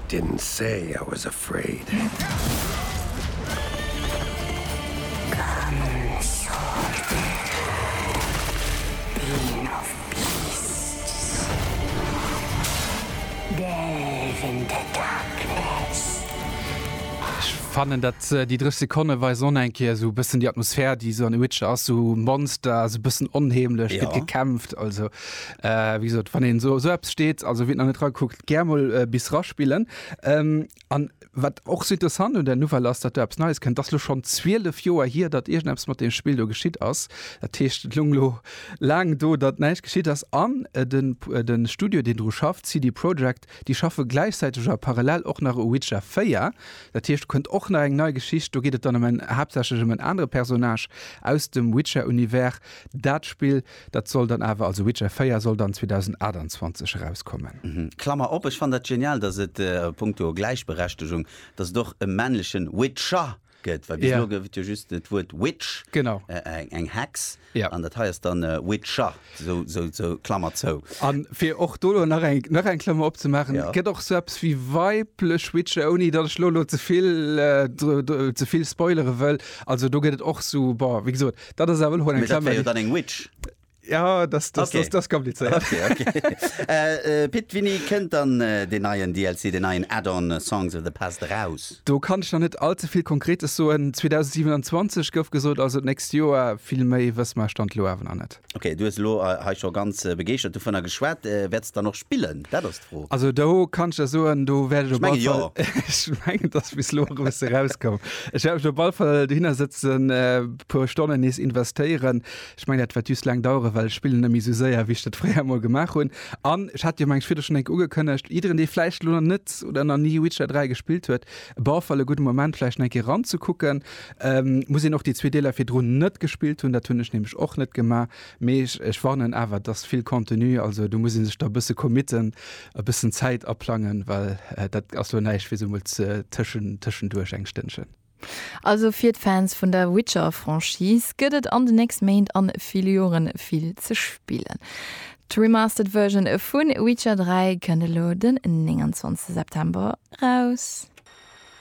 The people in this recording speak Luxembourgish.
Didn't say I was afraid. Ech fannen dat déi 3 Sekonne weisen och eng Kéier esou bëssen déi Atmosphär déi esou an The Witcher ass, esou Monster, esou bëssen onheemlech, gëtt gekämpft, also. Äh, wéi gesot, wann een esou esou eppes steet, also wien nach net ragekuckt, gär mol äh, bis raspillen. Ähm, an wat och sou interessant un der Nouvelle ass, datt do eppes Neies kënnt, datt lo schonn 12 Joer hier, datt iergendeppes mat deem Spill do geschitt ass. Dat heescht, et lung lo laang do, datt näischt geschitt ass. An äh, den, äh, den Studio, deen dru schafft, CD Projekt, déi schaffe gläichzäiteg a parallel och nach u Witcher 4. Dat heescht, do kënnt och nach eng nei Geschicht. Do geet et dann ëm en, haaptsächlech ëm en anere Personnage aus dem Witcher-Univers. Dat Spill Dat soll dann awer, also Witcher 4 soll dann 2028 erauskommen. Klammer op, Ech fannen dat genial, dass et a punkto Gläichberechtegung, dass et och e männlechen Witcher gëtt, well bis elo gouf et jo just dat Wuert Witch, eng Hex, an dat hei ass dann Witcher, sou Klammer zou. A fir och do elo nach eng nach eng Klammer opzemaachen, Et gëtt och sou eppes wéi weiblech Witcher, ouni datt ech elo elo ze vill ze vill spoilere wëll. Also do gëtt et och sou, bon, wéi gesot, Dat ass awer hoen Klammer. Jo dann eng Witch. Ja das, das, okay. das, das kompliziert. Okay, okay. äh, äh, Pit Winni kënnt dann äh, den neien DLC den neien Add-on äh, Songs of the Past raus. Do kann ich noch net allze viel konkretes so en 2027 gouf gesot also nächst Joer vill méi wëss mar stand lo awer an net. Okay du lo äh, ha schon ganz äh, begeert du vun der geschwert äh, werdst dann noch spillen dat Fro. Also do kann ech der soen, do wäert ech op alle Fall, ech mengen jo, dass bis elo e bësse rauskoum, ech wäert mech op alle Fall dohinner sëtzen, e puer Stonnen nees investéieren. Ech mengen dat wäert just laang daueren, well ech spillen net méi esou séier wéi ech dat fréier emol gemaach hunn. An ech hat jo mengt Video schonn eng Kéier ugekënnegt, jiddereen dee vläicht elo nach net oder nach ni Witcher 3 gespillt huet, op alle Fall e gudde Moment vläicht nach eng Kéier eranzekucken. Muss een och déi zwee Deeler virdrun net gespillt hunn, dat hunn ech nämlech och net gemaach, Mee ech warnen awer, et ass vill Contenu, also do muss ee sech da e bësse committen, e bëssen Zäit aplangen, well dat ass lo näischt fir esou emol tëschenduerch eng Stënnchen. Also fir d'Fans vun der Witcher-Franchise gëtt et an den nächste Méint a ville Jore vill ze spillen. D'Remastered Version vu Witcher 3 kënnt elo den 29 September eraus.